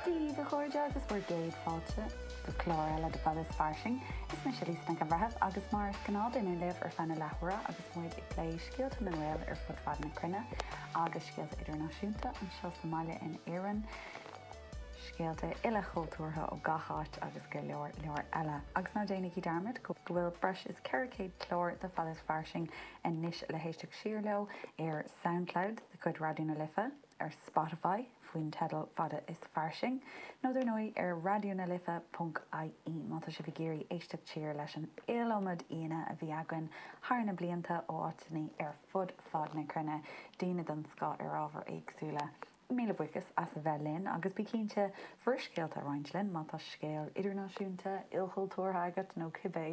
Daoibh, a chairde, agus bhur gcéad fáilte go clár eile de Fad is Fairsing. Is mise Lisa Nic an Bhreithimh agus mar is gnáth beidh mé libh ar feadh na leathuaire agus muid ag plé scéalta na nGael ar fud fad na cruinne agus scéalta idirnáisiúnta anseo sa mbaile in Éirinn, scéalta uilechultúrtha ó gach áit agus go leor, leor eile. Agus ná déanaigí dearmad go bhfuil breis is 400 clár de Fad is Fairsing anois le héisteacht siar leo ar Soundcloud de chuid Raidió na Life. ar Spotify faoin teideal Fad is Fairsing, nó dar ndóigh ar Raidió na Life punc ie má tá sibh ag iarraidh éisteacht siar leis an iliomad aíonna a bhí againn thar na blianta ó áiteanna ar fud fad na cruinne, daoine den scoth ar ábhair éagsúla. Míle buíochas as a bheith linn agus bí cinnte bhur scéalta a roinnt linn má tá scéal idirnáisiúnta, ilchultúrtha agat nó cibé!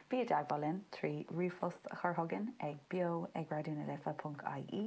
Bí i dteagmháil linn trí ríomhphost a chur chugainn ag beo ag raidiona life punc ie.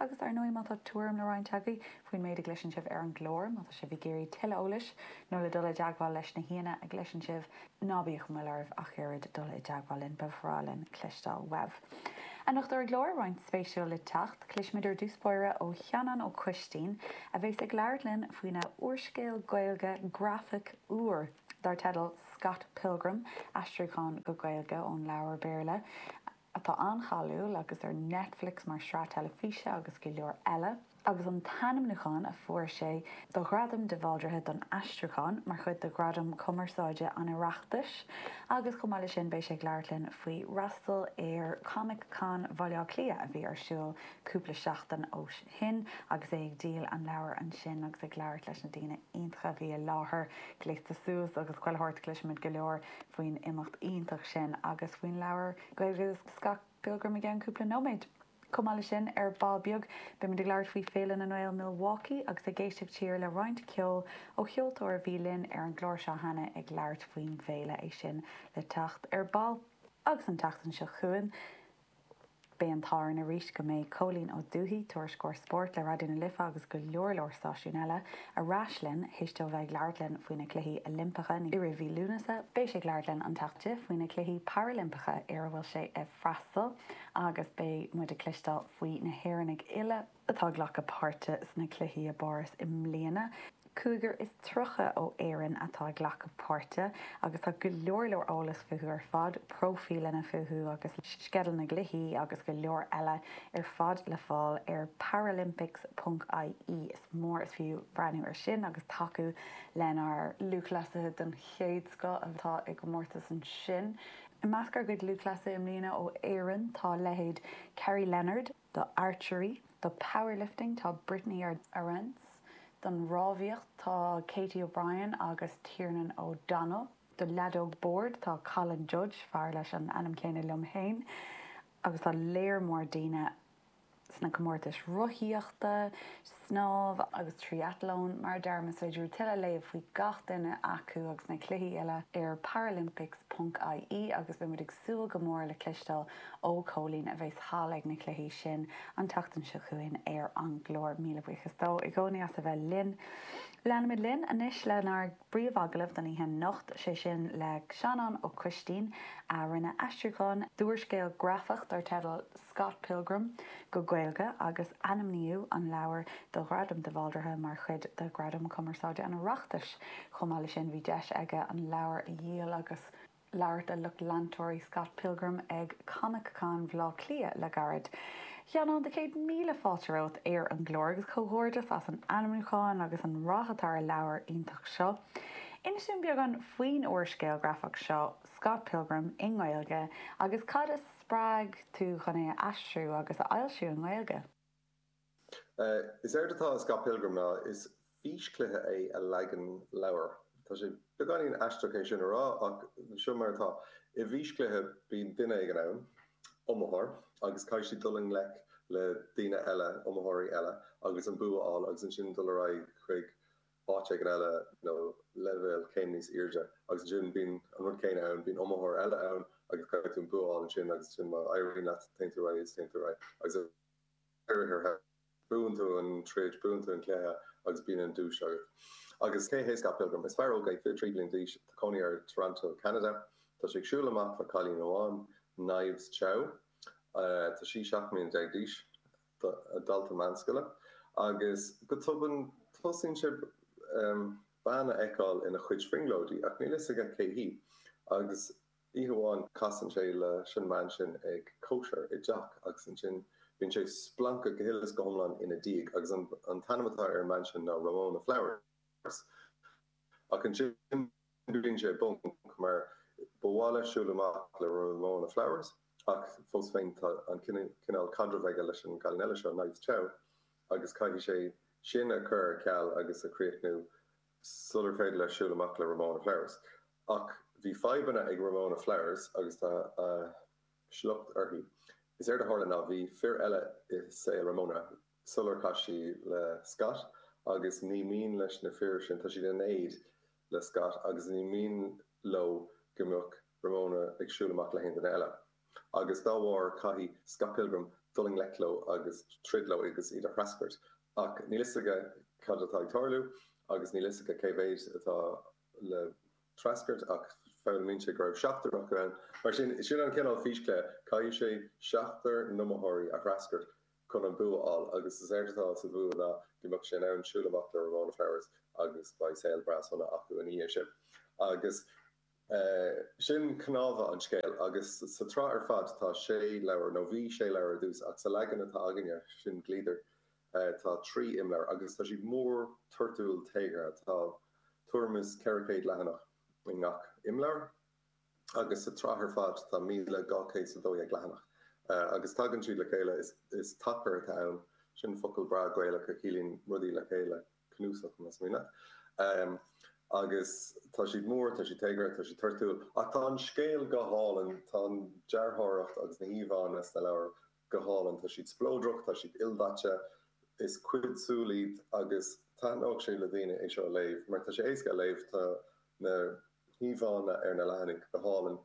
Agus, ar ndóigh, má tá tuairim le roinnt agaibh faoin méid a gcloiseann sibh ar an gclár, má tá sibh ag iarraidh tuilleadh eolais nó le dul i dteagmháil leis na haíonna a gcloiseann sibh, ná bíodh moill oraibh ach oiread dul i dteagmháil linn, ba bhreá linn cloisteáil uaibh. Anocht ar an gclár, roinnt speisialta le teacht, cloisfimid ar dtús báire ó Sheanán Ó Coistín, a bheas ag labhairt linn faoina úrscéal Gaeilge grafach úr dar teideal Scott Pilgrim, aistriúchán go Gaeilge ón leabhar Béarla. atá an-cháiliúil agus ar Netflix mar shraith teilifíse agus go leor eile, agus an t-ainmniúchán a fuair sé do Ghradam de Bhaldraithe don Aistriúchán mar chuid de Ghradaim Chumarsáide an Oireachtais, agus chomh maith leis sin beidh sé ag labhairt linn faoi fhreastal ar Comic Con Bhaile Átha Cliath a bhí ar siúl cúpla seachtain ó shin agus é ag díol an leabhair ansin agus ag labhairt leis na daoine iontacha a bhí i láthair. Gléasta suas agus chuile shórt, cloisfimid go leor. faoin imeacht iontach sin agus faoin leabhar Gaeilge Scott Pilgrim i gceann cúpla nóiméad. Chomh maith leis sin, ar ball beag, beimid ag labhairt faoi Féile na nGael Milwaukee agus ag éisteacht siar le roinnt ceoil ó cheoltóir a bhí linn ar an gclár seo cheana ag labhairt faoin bhféile, é sin le teacht ar ball. Agus an tseachtain seo chugainn. Beidh an t-ádh orainn arís go mbeidh Cóilín Ó Dufaigh, Tuairisceoir Spóirt le Raidió na Life agus go leor leor stáisiún eile, ar ais linn théis dó bheith ag labhairt linn faoi na Cluichí Oilimpeacha i rith mhí Lúnasa. Beidh sé ag labhairt linn an tseachtain seo faoi na Cluichí Parailimpeacha ar a bhfuil sé ag freastal agus beidh muid ag cloisteáil faoi na hÉireannaigh uile, atá ag glacadh páirte sna cluichí i bPáras i mbliana. Cúigear is tríocha ó Éirinn atá ag glacadh páirte agus tá go leor leor eolas fúthu ar fad, próifíleanna fúthu agus sceideal na gcluichí agus go leor eile ar fad le fáil ar paralympics.ie. Is mór is fiú breathnú ar sin agus tacú lenár lúthchleasaithe den chéad scoth atá i gcomórtas ansin. I measc ár gcuid lúthchleasaithe i mbliana ó Éirinn tá leithéid Kerry Leonard, do archery, do powerlifting tá Brittany Arendse, don rámhaíocht tá Katie O'Brien agus Tiernan O'Donnell, do leadóg bhoird tá Colin Judge, fear leis an ainm céanna liom féin, agus tá lear mór daoine sna comórtais rothaíochta, snámh agus triathlon, mar a deirim, is féidir tuilleadh a léamh faoi gach duine acu agus na cluichí uile ar paralympics ponc IE agus beidh muid ag súil go mór le cloisteáil ó Chóilín a bheas thall ag na cluichí sin an tseachtain seo chugainn ar an gclár. Míle buíochas dó i gcónaí as a bheith linn. Leanfaimid linn anois lenár. bpríomhagallamh don oíche anocht, sé sin le Seanán Ó Coistín, a rinne aistriúchán d'úrscéal grafach dar teideal Scott Pilgrim go Gaeilge, agus ainmníodh an leabhar do Ghradam de Bhaldraithe mar chuid de Ghradaim Chumarsáide an Oireachtais. Chomh maith leis sin, bhí deis aige an leabhar a dhíol agus. labhairt le lucht leantóirí Scott Pilgrim ag ComicCon Bhaile Átha Cliath le gairid. A Sheanáin, céad míle fáilte romhat, ar an gclár, agus comhghairdeas as an ainmniúchán agus an rath atá ar an leabhar iontach seo. Inis dúinn beagán faoin úrscéal grafach seo, Scott Pilgrim, i nGaeilge, agus cad a spreag tú chun é a aistriú agus a fhoilsiú i nGaeilge. Is éard atá i Scott Pilgrim ná is físchluiche é i leagan leabhair. Tá sé beagáinín aisteach é sin a rá ach seo mar atá, i bhfíschluiche bíonn duine éigin ann, iomaitheoir, agus caithfidh sé dul i ngleic le daoine eile, iomaitheoirí eile, agus an bua a fháil agus ansin dul ar aghaidh chuig áit éigin eile nó leibhéal céim níos airde agus ansin bíonn an rud céanna ann, bíonn iomaitheoir eile ann agus caithfidh tú an bua a fháil ansin agus ansin má éiríonn leat téann tú ar aghaidh is téann tú ar aghaidh agus ar deireadh, buann tú an troid, buann tú an cluiche agus bíonn an duais agat. Agus cé hé Scott Pilgrim? Is fear óg é, fiche trí bliana d'aois, tá cónaí air i dToronto, Ceanada. Tá sé ag siúl amach le cailín amháin, Knives Chau. Tá sí seacht mbliana déag d'aois, dalta meánscoile, agus go tobann tosaíonn sé bean a fheiceáil ina chuid brionglóidí, ach níl fhios aige cé hí. Agus. Oíche amháin casann sé leis an mbean sin ag cóisir i dteach agus ansin bíonn sé splanctha go huile is go hiomlán ina diaidh agus an t-ainm atá ar an mbean sin ná Ramona Flowers. Ach ansin bíonn sé i bponc mar ba mhaith leis siúl amach le Ramona Flowers ach fós féin tá an cineál caidrimh aige leis an gcailín eile seo, Knives Chau, agus caithfidh sé sin a chur ar ceal agus a chríochnú. sular féidir leis siúl amach le Ramona Flowers. Ach bhí fadhbanna ag Ramona Flowers agus tá a sliocht uirthi. Is éard a tharla ná bhí fir eile i saol Ramona sular chas sí le Scott agus ní mian leis na fir sin, tá siad in éad le Scott agus ní mian leo go mbeadh Ramona ag siúl amach le haon duine eile. agus dá bharr caithfidh Scott Pilgrim dul i ngleic leo agus troid leo agus iad a threascairt. Ach níl fhios aige cad atá ag tarlú agus níl fhios aige cé mhéid atá le threascairt ach foghlaimíonn sé go raibh seachtar acu ann. Mar sin, sin an cineál físchluiche, caithfidh sé seachtar n-iomaitheoirí a threascairt chun an bua a fháil agus is éard atá sa bhua ná go mbeadh sé in ann siúl amach le Ramona Flowers agus beidh saol breá sona acu ina dhiaidh sin. Agus. Sea, sin cnámha an scéil, agus sa tsraith ar fad tá sé leabhar, nó bhí sé leabhar ar dtús, ach sa leagan atá againne, sin Gliadar, tá trí imleabhar, agus tá siad mór, toirtiúil, téagartha, tá tuairim is 400 leathanach i ngach imleabhar, agus sa tsraith ar fad tá míle dhá chéad is a dó dhéag leathanach, agus tagann siad le chéile, is tacar atá ann, sin focal breá Gaelach a chiallaíonn rudaí le chéile. cnuasach na smaointe. Agus tá siad mór, tá siad téagartha, tá siad toirtiúil. Ach tá an scéal go hálainn, tá an dearthóireacht agus na híomhánna sna leabhair go hálainn. Tá siad spleodrach, tá siad ildaite, is cuid súl iad agus thaitneodh sé le daoine é seo a léamh mar tá sé éasca a léamh, tá na híomhánna ar na leathanaigh go hálainn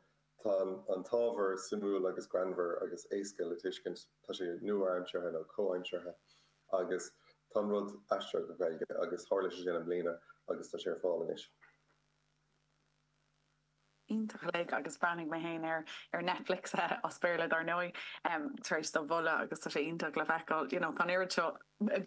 Tá an t-ábhar suimiúil agus greannmhar agus éasca le tuiscint. Tá sé nua-aimseartha nó comhaimseartha agus tá an rud aistrithe go Gaeilge agus tharla sé sin i mbliana agus tá sé ar fáil anois. Iontach uilig agus bhreathnaigh mé féin air ar Netflix, as Béarla dár ndóigh, tar éis do mholadh agus tá sé iontach le feiceáil, you know, tá an oiread seo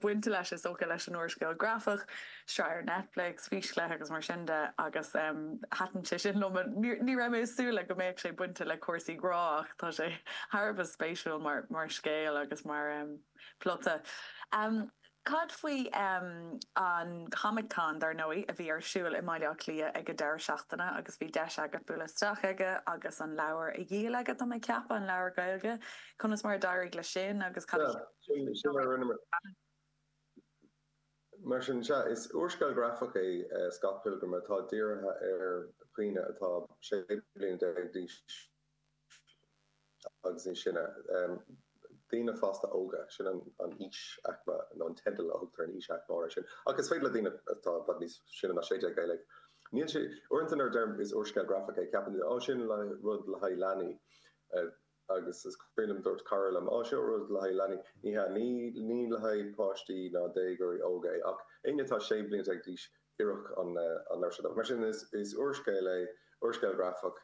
bainte leis, is dócha, leis an úrscéal grafach, sraith ar Netflix, Físchluiche agus mar sin de, agus thaitin sé sin liom. Ní raibh mé ag súil le go mbeadh sé bainte le cúrsaí grá ach tá sé thar a bheith spéisiúil mar scéal agus mar phlota. Cad faoi an ComicCon, dar ndóigh, a bhí ar siúl i mBaile Átha Cliath ag an deireadh seachtaine agus bhí deis agat bualadh isteach aige agus an leabhar a dhíol aige, tá mé ag ceapadh, an leabhar Gaeilge. Conas mar a d'éirigh leis sin agus cad a cheap tú? Mar sin, sea, is úrscéal grafach é Scott Pilgrim atá dírithe ar dhaoine atá 16 bliana d'aois agus níos sine, daoine fásta óga, sin an aois-aicme, nó an teideal a thugtar ar an aois-aicme áirithe sin, ach is féidir le daoine atá i bhfad níos sine ná 16 é a léamh. Níl sé, uaireanta nuair a deirim is úrscéal grafach é, ceapann daoine, Ó sin, rud le haghaidh leanaí. agus is cuimhin liom dúirt cara liom, 'Á, seo rud le haghaidh leanaí. Ní hea, ní le haghaidh páistí ná déagóirí óga é, ach éinne atá sé bliana déag d'aois, oirfeadh an leabhar seo dóibh. Mar sin, is úrscéal é, úrscéal grafach,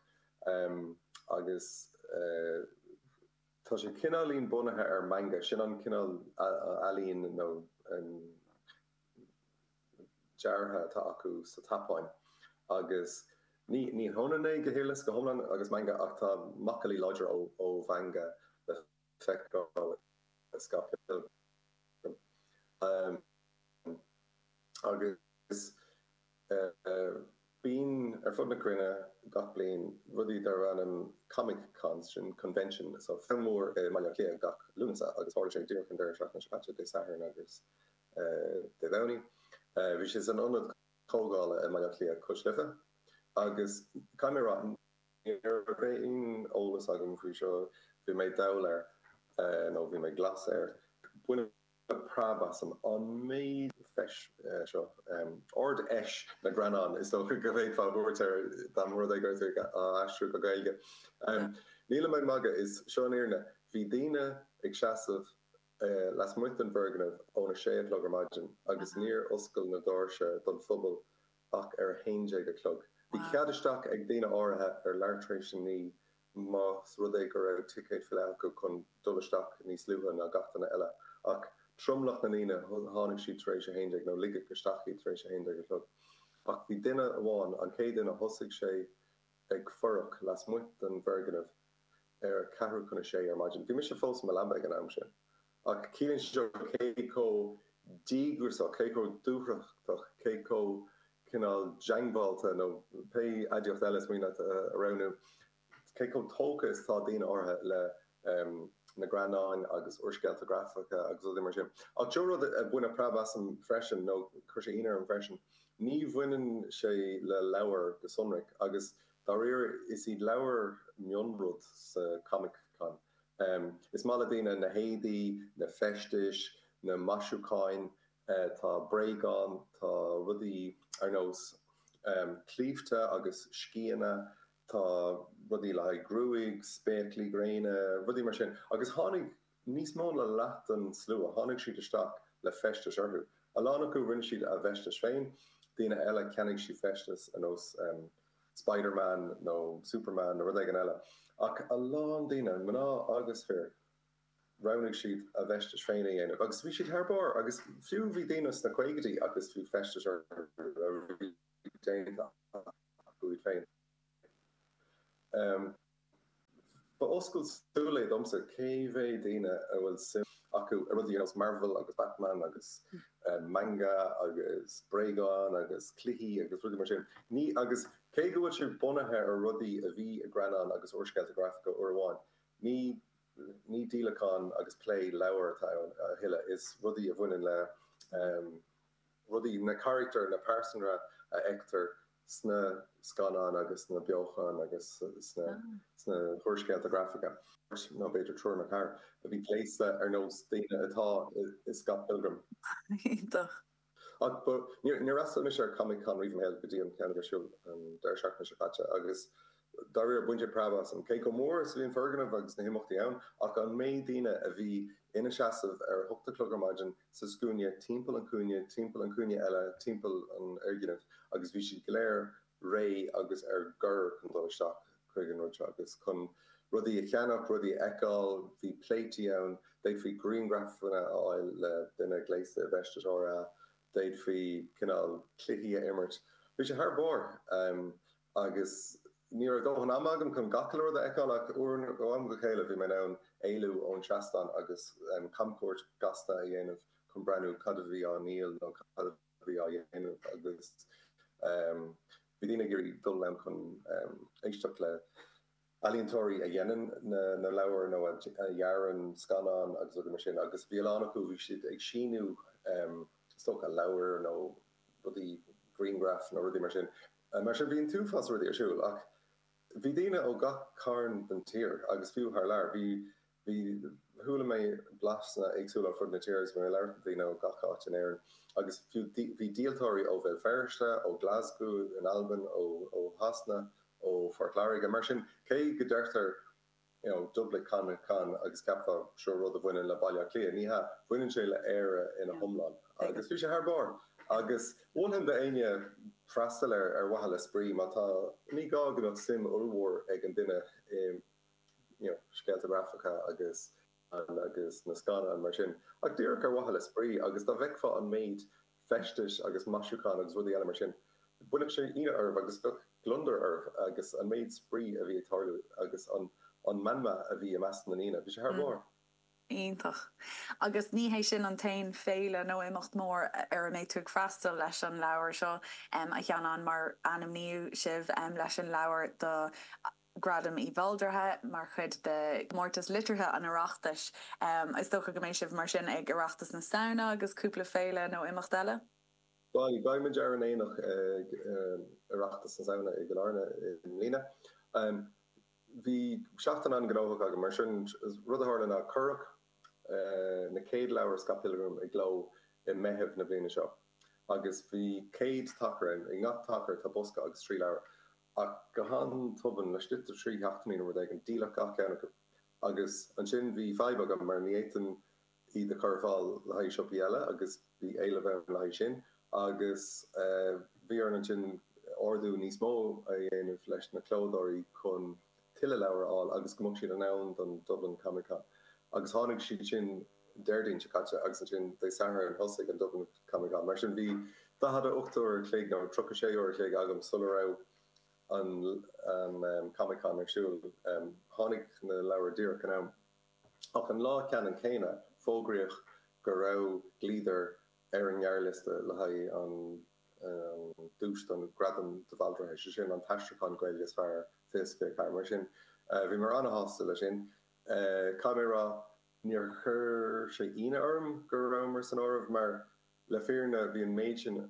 agus tá sé cineáilín bunaithe ar manga, sin an cineál ealaíne nó. deartha atá acu sa tSeapáin agus ní hionann é go huile is go hiomlán agus manga ach tá macallaí láidre ó mhanga le feiscint i Scott Pilgrim agus bíonn ar fud na cruinne gach bliain rudaí darb ainm Comic Cons, sin convention nó feis mhór i mBaile Átha Cliath gach Lúnasa agus tharla sé díreach an deireadh seachtaine seo caite, Dé Sathairn agus Dé Domhnaigh. Bhí sé san ionad comhdhála i mBaile Átha Cliath cois Life agus caithfidh mé a rá ní raibh aon eolas agam faoi seo, bhí mé dall air nó bhí mé glas air. Baineadh preab asam an méid feis seo, Ard-Fheis na nGreannán is dócha go bhféadfá a thabhairt air dá mba rud é go raibh sé á aistriú go Gaeilge. Nílim ag magadh, seo í an fhírinne, bhí daoine ag seasamh lasmuigh den bhfoirgneamh ón 6 a chlog ar maidin agus níor oscail na doirse don phobal ach ar 11 a chlog. Bhí cead isteach ag daoine áirithe ar leathuair tar éis a naoi más rud é go raibh ticéad fillte acu chun dul isteach níos luaithe ná gach duine eile, ach tromlach na ndaoine tháinig siad tar éis 11 nó ligeadh isteach iad tar éis 11 a chlog. Ach bhí duine amháin, an chéad duine, thosaigh sé ag fuireach lasmuigh den bhfoirgneamh. ar a ceathrú chun a sé ar maidin. Bhí mise fós i mo leaba ag an am sin. Ach ciallaíonn sé seo cé chomh díograiseach, cé chomh dúthrachtach, cé chomh cineál diongbháilte, nó pé aidiacht eile is mian leat a roghnú, cé chomh tógtha is atá daoine áirithe le na greannáin agus úrscéalta grafacha agus rudaí mar sin. Ach sé an rud a baineadh preab asam freisin, nó chuir sé ionadh orm freisin, ní bhaineann sé le leabhair go sonrach agus, Dáiríre, is iad leabhair mionrud sa Comic-Con. Is maith le daoine na héadaí, na feistis, na maisiúcháin, tá bréagáin, tá rudaí ar nós claímhte agus sceana, tá rudaí le haghaidh gruaig, spéaclaí gréine, rudaí mar sin. Agus tháinig. níos mó ná leath den slua, tháinig siad isteach le feistis orthu. A lán acu, rinne siad a bhfeistis féin, daoine eile, cheannaigh siad feistis ar nós Spider-Man nó Superman nó rud éigin eile. Ach a lán daoine, mná agus fir, roghnaigh siad a bhfeistis féin a dhéanamh agus bhí siad thar barr agus fiú bhí daoine sna caogaidí agus bhí feistis orthu a bhí déanta acu iad féin. Ba oscailt súl é domsa cé mhéad daoine a bhfuil suim acu i rudaí ar nós Marvel agus Batman agus Manga agus bréagáin agus cluichí agus rudaí mar sin. Ní agus cé go bhfuil sé bunaithe ar rudaí a bhí i greannáin agus úrscéalta grafacha uair amháin, ní ní díolachán agus plé leabhar atá ann a thuilleadh, is rudaí a bhaineann le rudaí, na carachtair, na pearsana a fheictear sna scannáin agus sna beocháin agus sna húrscéalta grafacha, nó b'fhéidir triúr nó ceathrar a bhí gléasta ar nós daoine atá i Scott Pilgrim. Iontach! Ach ba, níor fhreastail mise ar Comic Con riamh i mo shaol go dtí an ceann a bhí ar siúl an deireadh seachtaine seo caite agus Dá réir, baineadh preab asam, cé chomh mór is a bhí an foirgneamh agus na himeachtaí ann, ach an méid daoine a bhí ina seasamh ar a hocht a chlog ar maidin sa scuaine timpeall an chúinne, timpeall an chúinne eile, timpeall an fhoirgnimh, agus bhí siad go léir réidh agus ar gor chun dul isteach chuig an rud seo agus chun rudaí a cheannach, rudaí a fheiceáil. Bhí pléití ann, d'fhéadfaí grianghrafanna a fháil le duine gléasta i bhfeisteas Thor, d'fhéadfaí cineál cluichí a imirt. Bhí sé thar barr! agus ní raibh dóthain ama agam chun gach uile rud a fheiceáil ach ó am go chéile bhí mé in ann éalú ón seastán agus camchuairt ghasta a dhéanamh chun breathnú cad a bhí á dhíol nó cad a bhí á dhéanamh agus bhí daoine ag iarraidh dul ann chun éisteacht le ealaíontóirí a dhéanann na leabhair nó a dhearann scannáin agus rudaí mar sin agus bhí a lán acu, bhí siad ag síniú is dócha leabhair nó rudaí, grianghraif nó rudaí mar sin. Mar sin bhí an t-uafás rudaí ar siúl ach bhí daoine ó gach cearn den tír agus fiú thar lear. Bhí. Bhí, chuala mé blaseanna éagsúla ar fud na tíre agus mé ag labhairt le daoine ó gach áit in Éirinn agus fiú bhí díoltóirí ó Bhéal Feirste, ó Glasgow in Albain, ó Shasana, ó Phort Láirge. Mar sin, cé go ndeirtear you know Dublin Comic Con agus cheapfá seo rud a bhaineann le Baile Átha Cliath, ní hea, baineann sé le Éire ina hiomlán agus bhí sé thar barr agus mholfainn do éinne freastal air ar mhaithe le spraoi má tá, ní gá go mbeadh suim ollmhór ag an duine i. scéalta grafacha agus agus na scannáin mar sin, ach díreach ar mhaithe le spraoi, agus dá bhfeicfeá an méid feistis agus maisiúchán agus rudaí eile mar sin, chuirfeadh sé ionadh oraibh agus bheadh gliondar oraibh agus an méid spraoi a bhí ag tarlú agus an an meanma a bhí i measc na ndaoine, bhí sé thar barr. Iontach. Agus ní hé sin an t-aon féile nó imeacht mór ar a mbeidh tú ag freastal leis an leabhar seo, a Sheanáin, mar ainmníodh sibh leis an leabhar do Gradam de Bhaldraithe mar chuid de Chomórtas Liteartha an Oireachtais. Is dócha go mbeidh sibh mar sin ag Oireachtas na Samhna agus cúpla féile nó imeacht eile? Bhal, beidh muid ar an aonach ag Oireachtas na Samhna i gCill Airne i mbliana. Bhí seachtain an-ghnóthach againn mar sin. Rud a tharla ná cuireadh na chéad leabhair Scott Pilgrim i gcló i Meitheamh na bliana seo agus bhí 100 tacar ann. I ngach tacar tá bosca agus trí leabhar. Ach go han-tobann, laistigh de trí sheachtainí nó rud éigin, díoladh gach ceann acu. Agus ansin bhí fadhb agam, mar ní fhéadfainn iad a chur ar fáil le haghaidh siopaí eile agus bhí éileamh ann le haghaidh sin. Agus bhí orainn ansin ordú níos mó a dhéanamh leis na clódóirí chun. tuilleadh leabhar a fháil agus go mbeadh siad in am don Dublin Comic Con. Agus tháinig siad sin Déardaoin seo caite agus ansin Dé Sathairn thosaigh an Dublin Comic Con. Mar sin bhí daichead a ocht uair a chloig nó tríocha sé uair a chloig agam sula raibh an Comic Con ar siúl. Tháinig na leabhair díreach in am. Ach an lá ceannann céanna fógraíodh go raibh Gliadar ar an ngearrliosta le haghaidh an duais don Ghradam de Bhaldraithe, is é sin, an t-aistriúchán Gaeilge is fearr, faoi is pé catagóir. Mar sin, bhí mé an-sásta leis sin, caithfidh mé a rá. Níor chuir sé ionadh orm go rabhamar san áireamh mar, le fírinne, bhí an méid sin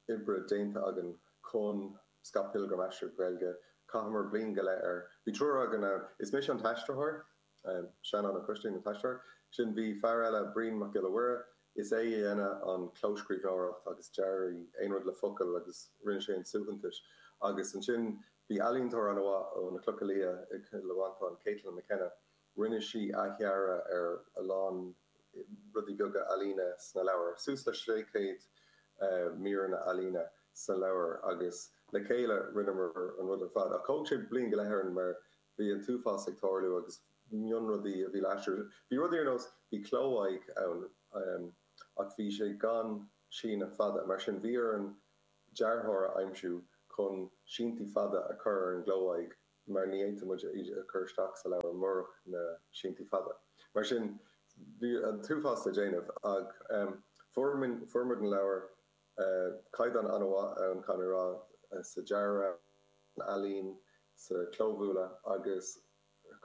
oibre déanta againn chun Scott Pilgrim, aistrithe go Gaeilge, chaitheamar bliain go leith air. Bhí triúr againn ann, is mise an t-aistritheoir, Seanán Ó Coistín an t-aistritheoir. Sin, bhí fear eile, Brian Mac Giolla Mhuire, is é a dhéanadh an clóscríbhneoireacht agus dearadh aon rud le focail agus rinne sé an suaitheantas. Agus ansin bhí ealaíontóir an-mhaith ó na Clocha Liatha i gCill Mhantáin, Caitlin McKenna, rinne sí athdhearadh ar a lán rudaí beaga ealaíne sna leabhair, suas le 600 míreanna ealaíne sna leabhair agus le chéile rinneamar an rud ar fad. Ach thóg sé bliain go leith orainn mar Bhí an t-uafás ag tarlú agus mionrudaí a bhí laistiar. Bhí rudaí ar nós, bhí cló-aghaidh ann ach bhí sé gan síneadh fada, mar sin bhí ar an dearthóir a aimsiú chun síntí fada a chur ar an gcló-aghaidh mar ní fhéadfadh muid iad a chur isteach sa leabhar murach na síntí fada. Mar sin bhí an t-uafás le déanamh ach fuair muid an leabhar. Caighdeán an-mhaith ann, caithfidh mé a rá, sa dearadh, san ealaín, sa chlóbhualadh agus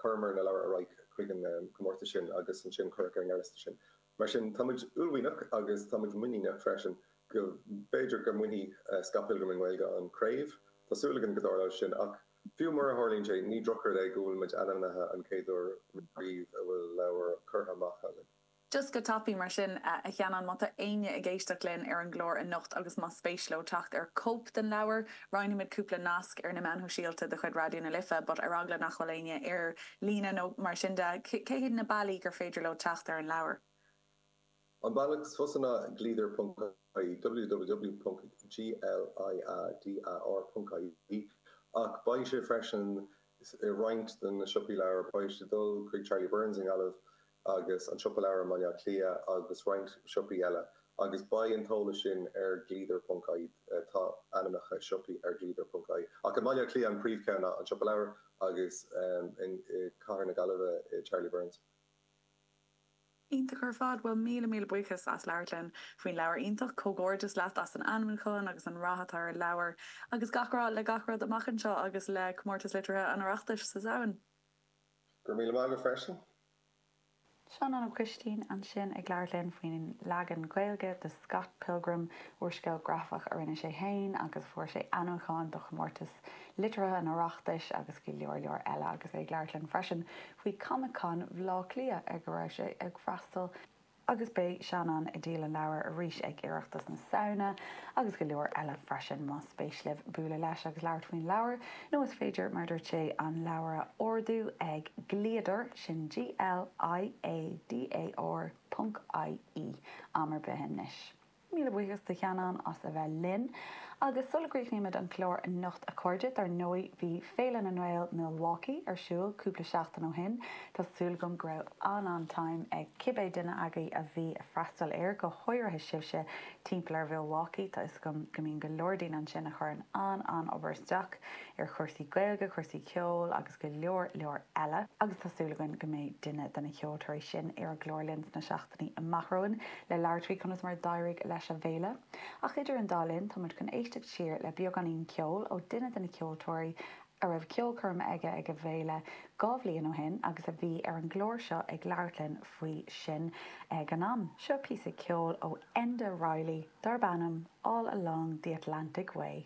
chuireamar na leabhair ar aghaidh chuig an gcomórtas sin agus ansin cuireadh ar an ngearrliosta sinn. Mar sin, tá muid uaillmhianach agus tá muid muiníneach freisin go b'fhéidir go mbainfidh Scott Pilgrim i nGaeilge an chraobh. Tá súil againn go dtarlóidh sin ach fiú mura dtarlaíonn sé, ní drochrud é go bhfuil muid ainmnithe an chéad uair riamh a bhfuil leabhar curtha amach againn. Just go tapaidh mar sin, a Sheanáin, má tá éinne ag éisteacht linn ar an gclár anocht agus más spéis leo teacht ar chóip den leabhar, roinnfimid cúpla nasc ar na meáin shóisialta de chuid Raidió na Life, but ar eagla nach bhfuil éinne ar líne nó mar sin de, cé hiad na bealaí gur féidir leo teacht ar an leabhar? An bealach is fusa ná gliadar ponc ie www.gliadar.ie ach beidh sé freisin i roinnt de na siopaí leabhar, beidh sé ag dul chuig Charlie Byrne's i nGaillimh, agus An Siopa Leabhar i mBaile Átha Cliath agus roinnt siopaí eile, agus beidh an t-eolas sin ar Gliadar.ie. atá ainmneacha siopaí ar Gliadar.ie, ach i mBaile Átha Cliath an príomhcheann ná An Siopa Leabhar agus i gCathair na Gaillimhe Charlie Byrne's. Iontach ar fad! Bhuel, míle míle buíochas as labhairt linn faoin leabhar iontach. Comhghairdeas leat as an ainmniúchán agus an rath atá ar an leabhar. Agus gach rath le gach rud amach anseo agus le Comórtas Liteartha an Oireachtais sa Samhain. Go raibh míle maith agat freisin. Seanán Ó Coistín ansin ag labhairt linn faoin leagan Gaeilge de Scott Pilgrim, úrscéal grafach a rinne sé féin agus fuair sé ainmniúchán do chomórtas liteartha an Oireachtais agus go leor leor eile agus é ag labhairt linn freisin faoi Comic Con Bhleá Cliath ar a raibh sé ag freastal agus beidh Seanán ag díol an leabhair arís ag Oireachtas na Samhna, agus go leor eile freisin. Más spéis libh bualadh leis agus labhairt faoin leabhar, nó is féidir, mar a dúirt sé, an leabhar a ordú ag Gliadar, sin G-L-I-A-D-A-R ponc I-E, am ar bith anois. Míle buíochas do Sheanán as a bheith linn. Agus sula gcríochnaímid an clár anocht a chairde, dar ndóigh bhí Féile na nGael Milwaukee ar siúl cúpla seachtain ó shin. Tá súil agam go raibh an-an-time ag cibé duine agaibh a bhí ag freastal air, go háirithe sibhse timpeall ar Mhilwaukee, tá 'fhios agam go mbíonn go leor daoine ansin a chuireann an-an-obair isteach ar chúrsaí Gaeilge, cúrsaí ceoil agus go leor leor eile. Agus tá súil againn go mbeidh duine de na ceoltóirí sin ar an gclár linn sna amach romhainn le labhairt faoi conas mar a d'éirigh leis an bhféile, ach idir an dá linn, táimid chun éisteacht siar le beagáinín ceoil ó duine de na ceoltóirí a raibh ceolchoirm aige ag an bhféile dhá bhliain ó shin agus a bhí ar an gclár seo ag labhairt linn faoi sin ag an am. Seo píosa ceoil ó Enda Reilly darb ainm 'All Along the Wild Atlantic Way'.